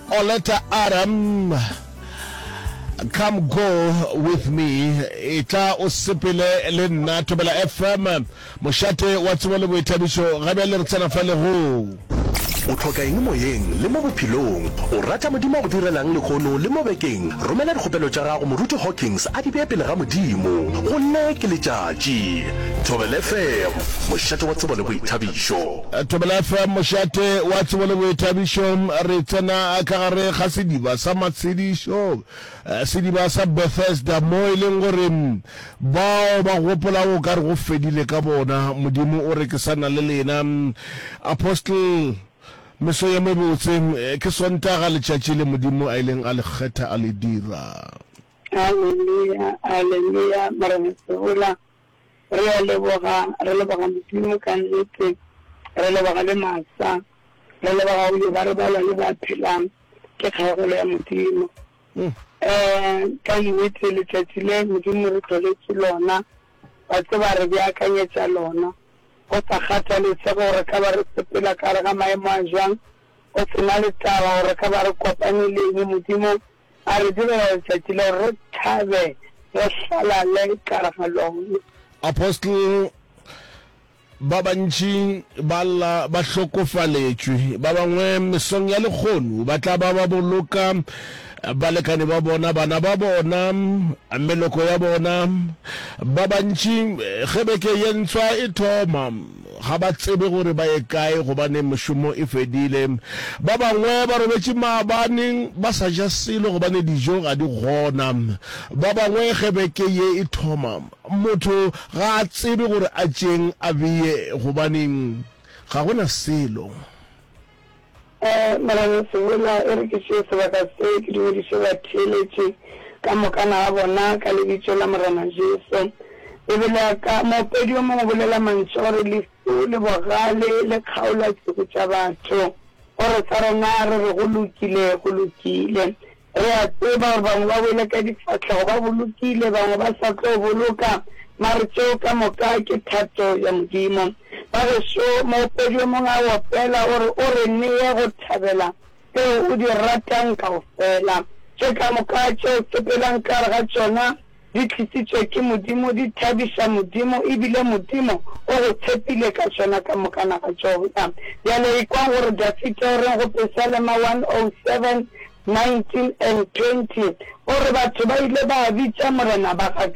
Oleta Aram, Come Go With Me, Etla O Sepele Le Nna, Thobela FM, Mošate Wa Tsebo Le Boithabišo, ga bjale re tsena fa legong. O hloka eng moyeng le mo bophelong? O rata Modimo a go direlang lehono le mo bekeng? Romela dikgopelo tša gago Moruti Hawkins a di bee pele ga Modimo. Gomme ke letšatši. Thobela FM, Mošate wa Tsebo le Boithabišo. Thobela FM mošate wa tsebo le boithabišo. Re tsena ka gare ga sediba sa matshedišo, sediba sa Bethesda, moo e leng gore bao ba gopolago o ka re go fedile ka bona. Modimo o re ke sa na le lena. Apostle, meso ye mebotse, ke Sontaga letšatši le Modimo a ileng a le kgetha a le dira. Aleluya, aleluya, Morena Sehula, Re a leboga, re leboga Modimo ka nnete, re leboga le masa, re leboga go leba re balwa le ba phelang, ke kgaogelo ya Modimo. Eh, ka nnete letšatši le Modimo re tloletše lona, wa tseba re beakanyetša lona, go sa kgathalesege gore re ka ba re sepela ka gare ga maemo a jwang, go se na le taba gore re ka ba re kopane le eng, Modimo, A re direla letšatši le gore re thabe, re hlalale ka gare ga lone. Apostle, Ba bantši ba lla ba hlokofaletšwe. Ba bangwe mesong ya lekgono ba tla ba ba boloka balekane ba bona, bana ba bona, meloko ya bona. Ba bantši ge beke ye ntswa e thoma, Ga ba tsebe gore ba ye kae gobane mešomo e fedile. Ba bangwe ba robetše maabane ba sa ja selo gobane dijo ga di gona. Ba bangwe ge beke ye e thoma, motho ga a tsebe gore a tšeeng a beye gobane ga go na selo. Ee, mara re se bola, e re ke tšee sebaka se, ke dumediše batheeletši ka mokana ga bona ka Lebitšo la Morena Jesu. Bibele ya ka, Moopedi yo mongwe o bolela mantšu a go re, Lehu le bogale le kgaola tšhugu tša batho. Go re sa rena re re, Go lokile, go lokile. Re a tseba gore bangwe ba wele ka difahlego ba bolokile, bangwe ba sa tlo boloka, mare tšeo ka moka ke thato ya Modimo. Bagešo, moopedi yo mongwe a opela, o re, O re neye go thabela tšeo o di ratang kaofela. Tše ka moka tše o sepelang ka gare ga tšona Di tlisitšwe ke Modimo, di thabiša Modimo, e bile Modimo o go tshepile ka tšona ka mokana ga tšona. Bjale ekwang gore Dafita o reng go Pesalema 107, 19 and 20. O re, Batho ba ile ba bitša Morena ba ga ka.